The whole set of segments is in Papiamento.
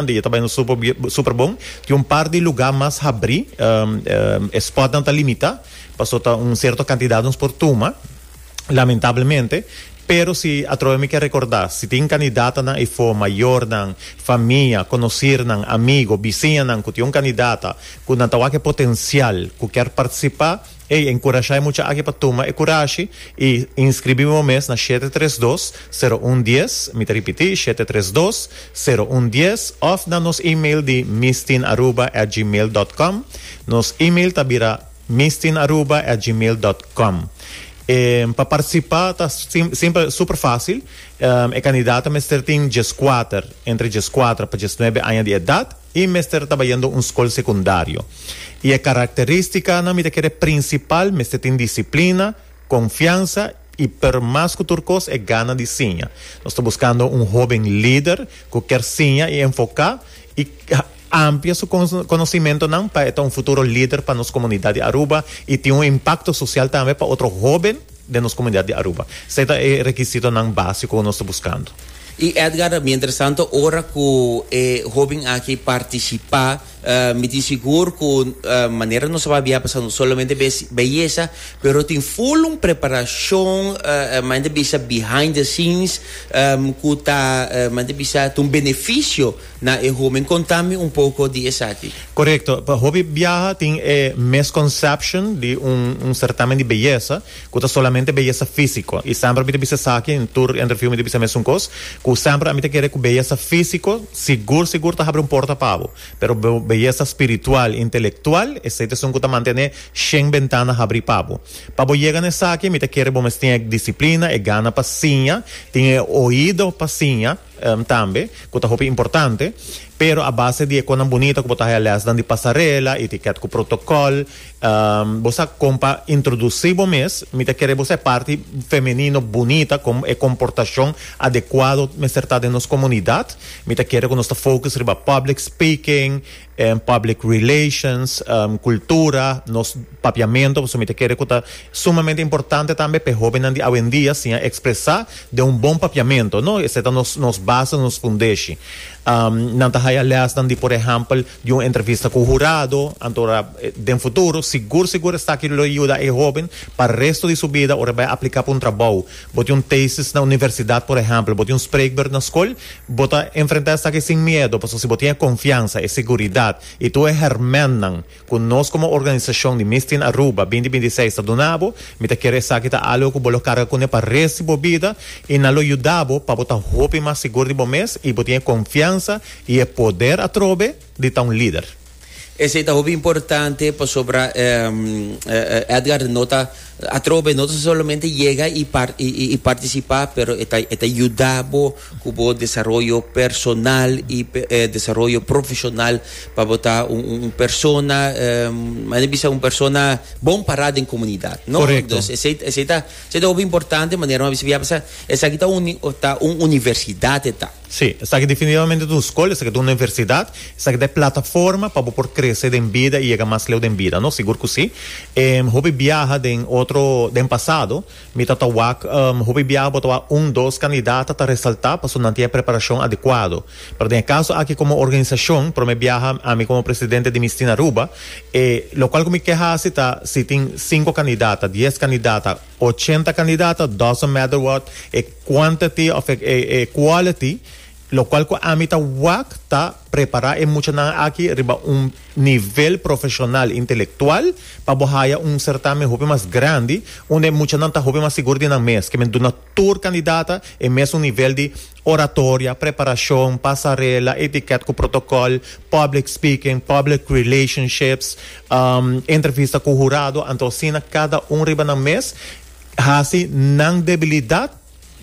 Di e ta bai un super bon tin un par di luga mas habri e spot nan ta limita paso ta un cierto cantidad nos por tuma lamentablemente pero si atrobe mi ke recorda si tin candidata nan efo mayor nan famia conocer nan amigo bisiña nan cu tin un candidata cu nan ta wak e potencial cu ker participa Ey a enkurashá e mucha aki pa tuma e kurashi i inskribí bo mes na shete tres dos, sero un dies, mi ta ripití, shete tres dos, sero un dies, òf na nos email di misdinaruba at gmail dòt kòm. Nos email ta bira misdinaruba at gmail dòt kòm. Pa partisipá ta simpel, super fásil. E kandidat ta mester tin djeskuater, entre djeskuater pa djesnuebe aña di edat. I mester tabayendo un skol sekundario. I e karakterístikanan mi ta kere prinsipal, mester tin disiplina, konfiansa i p'er mas ku tur kos e gana di siña. Nos ta buskando un hóben lider ku kier siña i enfoká i amplia su konosimentonan pa e ta un futuro lider pa nos komunidat di Aruba i tin un impakto sosial tambe pa otro hóben. den nos komunidat di Aruba. Esei ta e rekisitonan básiko ku nos ta buskando. I Edgar, ta mi interesante ora ku e hóben aki partisipá, mi tin sigur ku manera nos a pabia pasá no solamente besi beyesa, pero tin ful un preparashon, men ta bisa behind the scenes, ku ta men ta bisa ta un benefisio Na e homin conta mi un poco di esaki. Correcto, pa hopi biaha tin e misconception di un un certamen di beyesa cu ta solamente beyesa fisico y semper mi ta bisa esaki en tur interview mi ta bisa mesun cos cu semper ami ta kere cu beyesa fisico sigur sigur ta habri un porta pa abo pero beyesa spiritual, intelectual esey ta esun cu ta mantene shen bentana habri pa abo. Pa bo yega na esaki mi ta kere bo mes tin e disciplina, e gana pa siña, tin e oido pa siña. tambe, ku ta hopi importante, pero a base di e konan bunita ku bo ta haña lèsnan di pasarela, itikèt ku protokòl, bo sa kon pa introdusí bo mes, mi ta kere bo sa e parti femenino bunita, kon e komportashon adekuado mester ta den nos komunidat, mi ta kere ku nos ta focus riba public speaking, public relations, cultura, nos papiamento pasobra mi ta kere cu ta sumamente importante tambe p'e hobennan di awendia siña expresa den un bon papiamento, no? Esei ta nos nos base, nos fundeshi. Nan ta haya lesnan di por ehempel di un entrevista cu hurado anto ra den futuro sigur sigur esaki lo yuda e hoben pa resto di su bida ora e bai a aplica pa un trabou. Bo tin un thesis na universidad por ehempel, bo tin un spreekbeurt na scol, Bo ta enfrentá esaki sin miedu pasobra si bo tin e konfiansa, e seguridat i tur e hèrmènnan ku nos komo organisashon di Miss Teen Aruba binti binti seis ta duna bo, mi ta kere esaki ta algu ku bo lo karga kuné pa res di bo bida i nan lo yuda bo pa bo ta hopi mas sigur di bo mes i bo tin e konfiansa i e poder atrobe. di ta un lider. Esei ta hopi importante pasobra Edgar no ta atrobe, no ta solamente yega i participa, pero e ta yuda bo cu bo desaroyo personal i desaroyo profesional pa bo ta un persona, men a bisa un persona bon para den comunidad, no? Dus esei ta hopi importante manera bo a bisa, esaki ta un universidad e ta. Sí, esaki definitivamente ta un skol, esaki ta un universidad, esaki ta e plataforma pa bo por krese den bida i yega mas leu den bida, no? Sigur ku si. Em, hopi biaha den otro, den pasado, mi ta ta wak, em, hopi biaha bo ta wak un, dos kandidat ta ta resaltá pasobra nan tin e preparashon adekuado. Pero den e kaso aki komo organisashon, promé biaha ami komo presidente di Misti na Aruba, e lokual ku mi ke hasi ta, si tin sinku kandidat, ta dies kandidat, ta. ochenta kandidata, doesn't matter what e quantity of e e quality, lokual ku ami ta wak ta prepará e muchanan aki riba un nivel profeshonal intelektual pa bo haya un sertamen hopi mas grandi unda e muchanan ta hopi mas sigur di nan mes, ke men duna tur kandidata e mesun nivel di. oratoria, preparashon, pasarela, etikèt ku protokòl, public speaking, public relationships, entrevista ku hurado, anto asina kada un riba nan mes hasi nan debilidat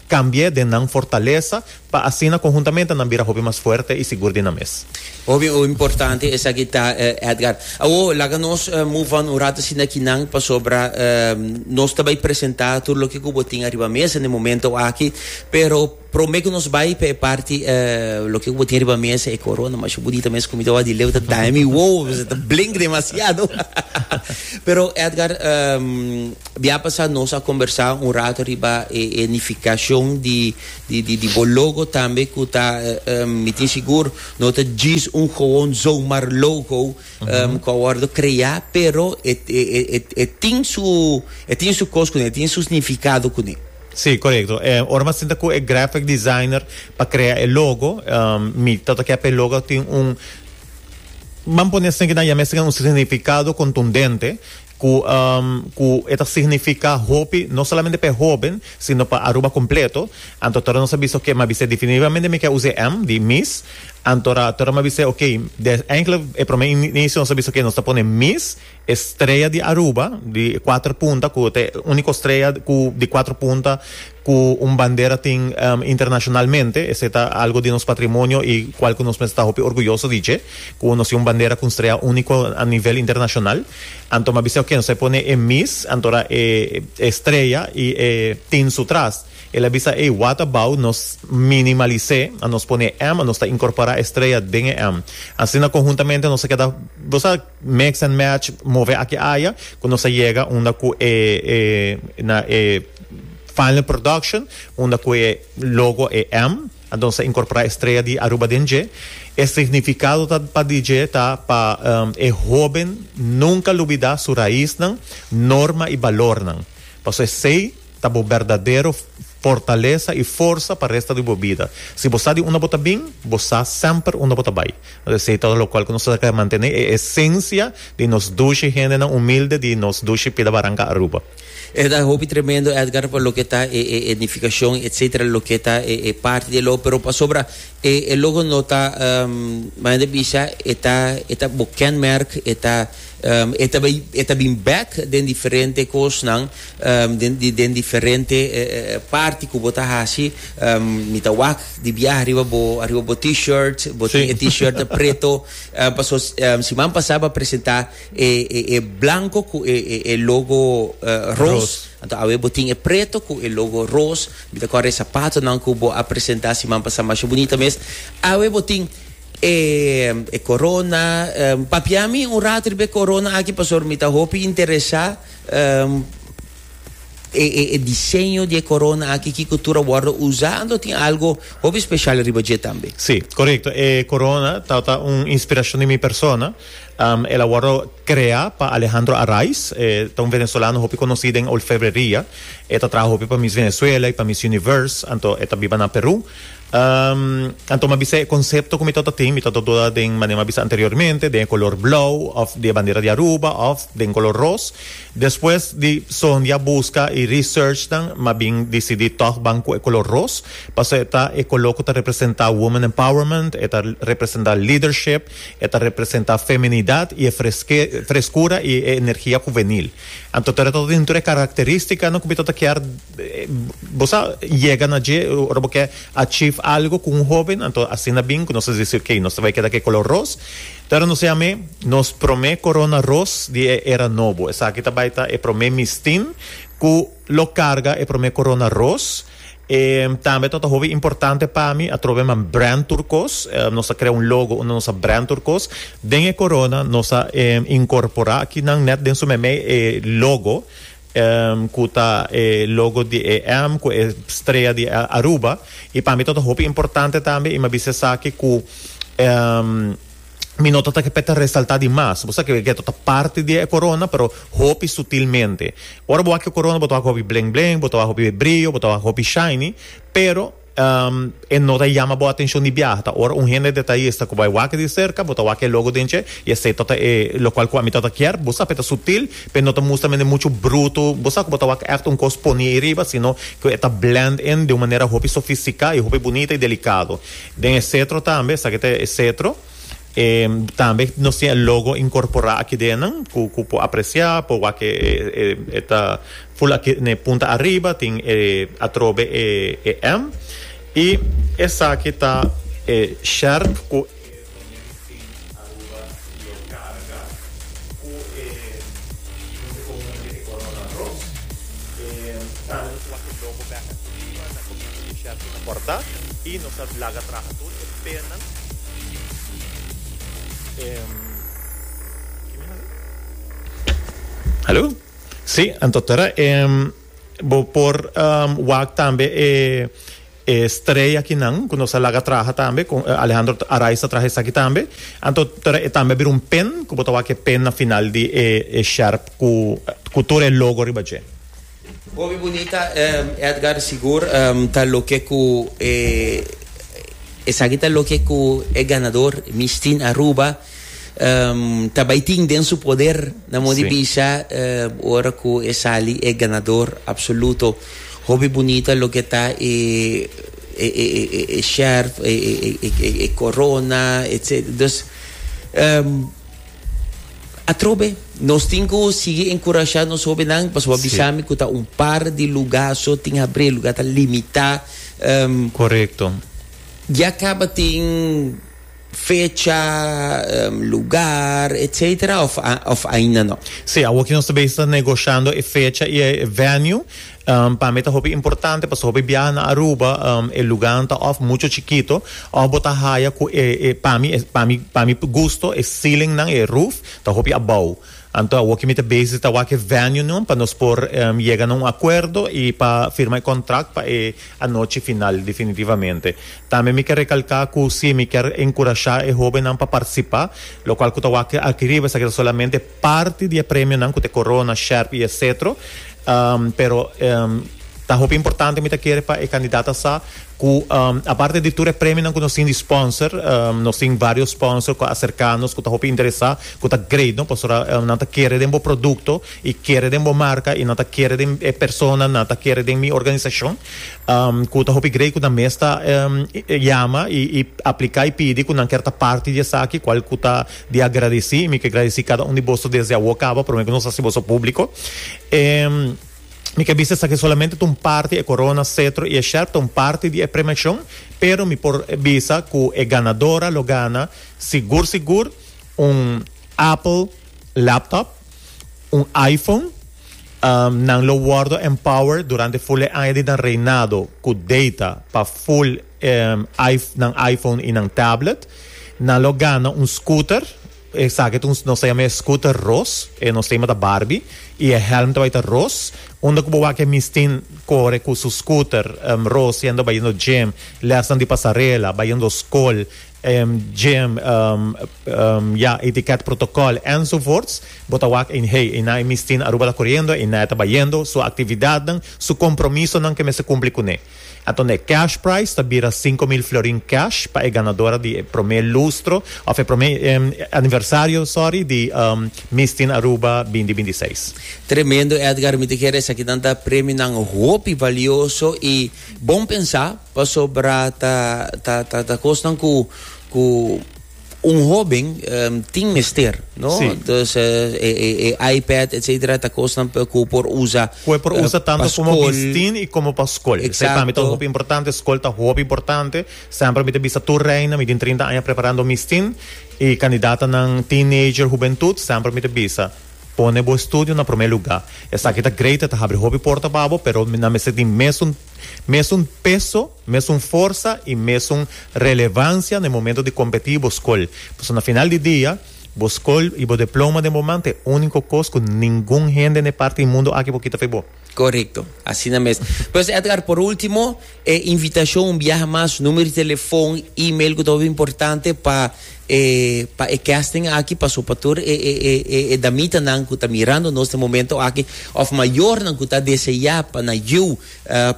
kambi'é den nan fortalesa pa asina konhuntamente nan bira hopi mas fuerte i sigur di nan mes. Hopi o importante esaki ta Edgar. Awor laga nos move on un rato asina kinan pasobra nos ta bay presenta tur loke cu bo tin ariba mesa n'e momento aki pero prome cu nos bay pa e parti loke cu bo tin ariba mesa e corona masha bunita mes comida wak di leu ta daña mi wowo pasobra ta blink demasiado pero Edgar bia pasa nos a conbersa un rato riba e nificacion di bo logo tambe cu ta mi tin sigur No ta djis un gowon zomar logo ku a wòrdu kreá, pero e e e tin su e tin su kos kuné, e tin su snifikado kuné. Sí, korekto. E ora mi a sinta ku e graphic designer pa krea e logo, mi ta tokiá pa e logo tin un, ban pone asin, kinan yam'é asin, un snifikado kontundente. ku ku e ta signifiká hopi no solamente pa e hóben sino pa Aruba kompleto anto tora nos a bisa oke mi a bisa definitivamente mi ke usa e m di mis anto ora tora mi a bisa oke de enkele e prome inisio nos a bisa oke nos ta pone mis e strea di Aruba di kuater punta ku ta e úniko strea ku di kuater punta. cu un bandera tin internacionalmente, esey ta algo di nos patrimonio y cual cu nos mester ta hopi orguyoso di dje, cu nos tin un bandera cu un strea unico a nivel internacional. Anto m'a bisa oke, nos a pone e mis, antora e e strea y e tin su tras. El a bisa ey, what about nos minimalisé, a nos pone e M, a nos ta incorpora e strea den e M. Asina conhuntamente nos a keda, bo sa. Mix and match move aki aya cu nos a yega unda cu e na e final production unda cu e logo e M anto sa incorpora estrella di Aruba den dje e significado ta pa di dje ta pa e hoben nunca lubida su raisnan, norma y balornan pasobra esey Ta bo berdadero fortalesa i forsa pa resta di bo bida. Si bo sa di unda bo ta bin, bo sa semper unda bo ta bai. Nos esei tora lokual ku nos ta traha mantené e esensia di nos dushi hendenan umilde di nos dushi pida baranka Aruba. E ta hopi tremendo Edgar pa loke ta e e edifikashon etsetera loke ta e e parti di e logo pero pasobra e e logo no ta manera di bisha e ta e ta bo kenmerk e ta e ta bai e ta bin bek den diferente kosnan den diferente parti ku bo ta hasi mi ta wak di biaha riba bo ariba bo t-shirt bo tin e t-shirt preto paso siman pasa bo a presenta e blanco ku e logo ros anto awe bo tin e preto ku e logo ros mi ta kòrda e sapatonan ku bo a presenta siman pasa masha bunita mes awe bo tin e corona papia mi un rato riba e corona aki pasobra mi ta hopi interesa E diseño di e corona aki kico tur a wordo usa, anto tin algo hopi special riba dje tambe? Sí, corecto. E corona tabata un inspiracion di mi persona. El a wordo crea pa Alejandro Araiz, e ta un venezolano hopi conoci den olfebreria. E ta traha hopi pa Miss Venezuela y pa Miss Universe, anto e ta biba na Peru. Anto mi a bisa e konsepto ku mi tabata tin, mi tabata duda den manera mi a bisa anteriormente, den e kolor blou òf di e bandera di Aruba òf den kolor ros. Despues di sohondia buska i researchnan mi a bin disidí tòg ban ku e kolor ros pasobra e ta e kolor ku ta representá women empowerment, e ta representá leadership, e ta representá feminidat i e freskura i e energia huvenil. Anto tur e ta dentu di e karakterístikanan ku mi tabata kier. Bo sa yega na dje ora bo ke achieve algo ku un hoben anto asina bin ku nos a disi ok nos ta bai keda ku e kolor ros pero no sea amé nos promé korona ros di e era nobo esaki ta bai ta e promé mistin ku lo karga e promé korona ros e tambe ta ota hopi importante pa mi atrobe man brand tur kos nos a krea un logo unda nos a brand tur kos den e korona nos a inkorporá akinan nèt den su meme e logo. Em cu ta e logo di e em cu e strea di Aruba y pa mi ta ta hopi importante tambe y mi a bisa esaki cu em mi no ta ta ke ta resalta di mas bo sa ke ke ta ta parti di e corona pero hopi sutilmente ora bo wak e corona bo ta wak hopi bleng bleng bo ta wak hopi brillo bo ta wak hopi shiny pero E no ta yama bo atencion di biaha, ta ora un hende detallista cu bai wak di cerca, bo ta wak e logo den dje y esey ta ta e locual cu ami ta ta kier, bo sa pe ta sutil, pe no ta mustra mende mucho bruto, bo sa cu bo ta wak echt un cos poni ey riba, sino cu e ta blend in den un manera hopi sofistica y hopi bunita y delicado. Den e cetro tambe, esaki ta e cetro. E tambe nos tin e logo incorpora aki denan cu cu por aprecia por wak e e e ta full aki n'e punta ariba tin e atrobe e e M y esaki ta e sherp cu e. Pernan. Hallo? Sí, anto tora e bo por wak tambe e e strea kinan ku nos a laga traha tambe ku Alejandro Araiz ta traha esaki tambe. Anto tora e tambe a bira un pen ku bo ta wak e pen na final di e e sherp ku ku tur e logo riba dje. Hopi bunita Edgar sigur ta loke ku e esaki ta loke ku e ganador Miss Teen Aruba ta bai tin den su poder na modo di bisa ora ku e sali e ganador absoluto hopi bunita loke ta e e sherf e corona etcetera dus. Atrobe, nos tin ku sigui enkurashá nos hóbennan pasobra bo a bisa mi ku ta un par di lugá so tin habré, lugá ta limitá. Korekto. Ya kaba tin fecha, lugar, etsetera òf ainda no? Sí, awor ki nos ta besi ta negoshando e fecha i e venue. Pa mi ta hopi importante pasobra hopi biaha na Aruba e luganan ta òf mucho chikito òf bo ta haya ku e e pa mi pa mi pa mi gusto e ceilingnan e roof ta hopi abou. Anto awor ke mi ta bezi ta wak e venuenan pa nos por yega na un akuerdo i pa firma e kontrakt pa e anochi final definitivamente. Tambe mi ke rekalká ku si mi kèr enkurashá e hóbennan pa partisipá lokual ku ta wak aki riba esaki ta solamente Parti di e premionan ku ta e korona, sherp i e setro, pero ta hopi importante mi ta kere pa e kandidata sa ku aparte di tur e premionan ku nos tin di sponsor, nos tin varios sponsor ku a aserká nos ku ta hopi interesá ku ta great no pasobra nan ta kere den bo produkto i kere den bo marka i nan ta kere den e persona nan ta kere den mi organisashon ku ta hopi great ku nan mes ta yama i apliká i pidi ku nan ker ta parti di esaki kual ku ta di a gradeci, mi ke gradeci cada un di boso desde awo caba, prome cu nos haci boso publico. E mi ke bisa esaki solamente ta un parti, e corona, cetro y e sherp ta un parti di e premiacion, pero mi por bisa cu e ganadora lo gana sigur sigur un Apple laptop, un iPhone, nan lo wordo empowered durante full e aña di nan reinado cu data pa full nan iPhone y nan tablet. Nan lo gana un scooter. Esaki ta un, nos ta yama e scooter ros. E nos tema ta Barbie. Y e helm ta bay ta ros. Unda cu bo wak e Miss Tin core cu su scooter ros yendo bayendo gym, lesnan di pasarela, bayendo scol, gym, ya, etiquette protocol enzovoorts. Bo ta wak ey hey, ey na e Miss Tin Aruba ta coriendo, ey na e ta bayendo. Su actividadnan, su compromisonan ke mester cumpli cune. Anto e cash prize ta bira sinku mil florin cash pa e ganadora di e promé lustro òf e promé aniversario, sorry, di Miss Teen Aruba binti binti seis. Tremendo Edgar, mi ta kere esakinan ta premionan hopi valioso i bon pensá pasobra ta ta ta ta kosnan ku ku. Un hoben tin mester, no? Sí. Dus e, e, e, e iPad, etcétera, ta cosnan pe cu por usa. Cu e por eh, usa tanto como school. bistin y como pa school. Exacto. Esey ta hopi importante, school ta hopi importante. Sempre mi te bisa tur reina, mi tin trinta aña preparando mistin y candidatanan teenager, hubentud, sempre mi te bisa, pone bo estudio na prome lugar. Esaki ta great, e ta habri hopi porta pa bo, pero nan mester tin mesun Mesun peso, mesun forsa i mesun relevansia na e momento di kompetí i bo skol. Pasobra na final di dia, bo skol i bo deploma den bo man ta e úniko kos ku ningun hende na e parti di mundu aki por kita for bo. Korekto, asina mes. Pues Edgar, por último, e invitashon un biaha mas, número di telefòn, email ku ta hopi importante pa E pa e casting aki paso pa tur e e e e e damitanan cu ta mirando nos den momento aki of mayornan cu ta desea pa na yiu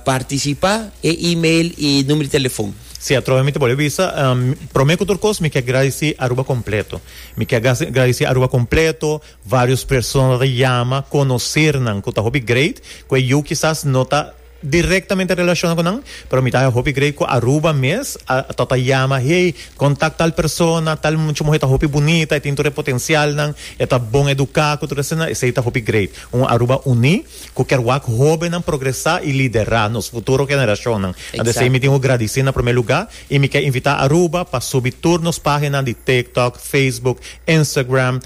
participa e email y numero di telefon. Si atrohe mi ta bolbe bisa, prome cu tur cos mi ke gradici Aruba completo. Mi ke gradici Aruba completo, varios persona ta yama, conocernan cu ta hopi great cu e yiu kisas no ta. directamente relaciona cu nan, pero mi ta haña hopi grei cu Aruba mes a ta ta yama, hey, contact tal persona, tal mucha muher ta hopi bunita, e tin tur e potencialnan, e ta bon educa, cu tur esnan, esey ta hopi great. Un Aruba uni, cu kier wak hobennan progresa y lidera, nos futuro generacionnan. Ant esey mi tin cu gradici na primer lugar y mi ke invita Aruba pa subi tur nos pagina di TikTok, Facebook, Instagram,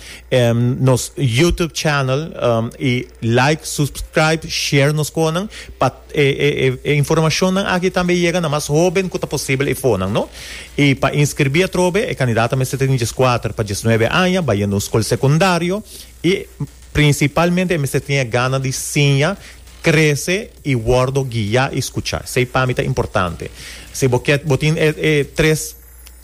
nos YouTube channel y like, subscribe, share nos conan pa e e informacionnan aki tambe yega na mas hoben cu ta posibel e fonan no. Y pa inscribi atrobe e candidato a mester tin dieskuater pa diesnuebe aña, baya na un scol secundario y principalmente e mester tin e gana di siña, crece y wordo guia y scucha. Esey pa mi ta importante. Si bo kier bo tin e e tres.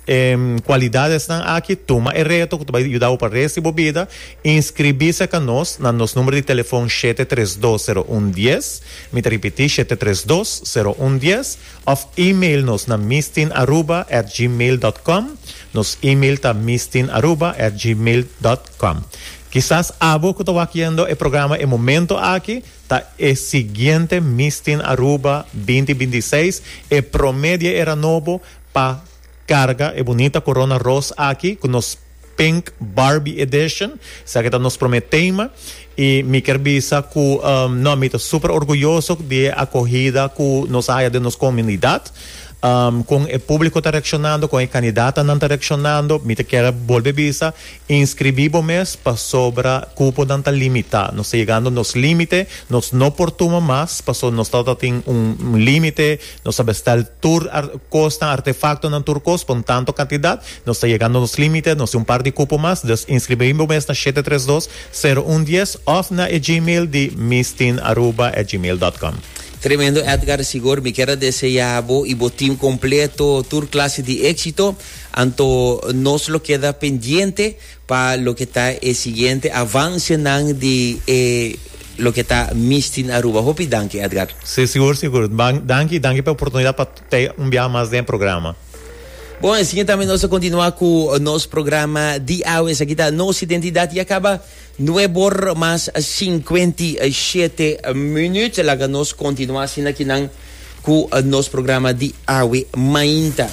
E cualidadesnan aki, tuma e reto cu ta bay yuda'u pa rest di bo bida. Inscribí sa ca nos na nos numero di telefon shete tres dos sero un dies, mi ta ripití shete tres dos sero un dies, of e-mail nos na misteinaruba at gmail dot com. Nos e-mail ta misteinaruba at gmail dot com. Kisas abo cu ta wakiendo e programa e momento aki ta e siguiente Misten Aruba binti binti seis, e prome di e era nobo, Pa carga e bunita corona ros aki cu nos Pink Barbie Edition. Esaki ta nos prome tema. Y mi kier bisa cu no, mi ta super orguyoso di e acogida cu nos a haya den nos comunidad. Con e publico ta reaccionando, con e candidatanan ta reaccionando. Mi ta kier bolbe bisa, inscribi bo mes pasobra cuponan ta limita. Nos ta yegando nos limite, nos no por tuma mas paso nos tabatin un limite Nos a bestel tur kosnan, artefaktonan, tur kos pa un tanto kantidat. Nos ta yegando nos límite, nos tin un par di kupo mas. Dus inskribí bo mes na shete tres dos, sero un dies òf na e gmail di mistiinaruba at gmail dòt com. Tremendo Edgar Sigur, mi kier a deseá bo i bo team kompleto tur klase di éksito. Anto nos lo keda pendiente. pa loke ta e siguiente avancenan di e loke ta Misty na Aruba. Hopi danki Edgar. Si sigur sigur danki danki p'e oportunidad pa ta un biaha mas den e programa. Bon esaki tambe nos ta continua cu nos programa di awe esaki ta Nos Identidad y a caba nuebe or mas cincuenta y shete minut laga nos continua asina kinan cu nos programa di awe mainta.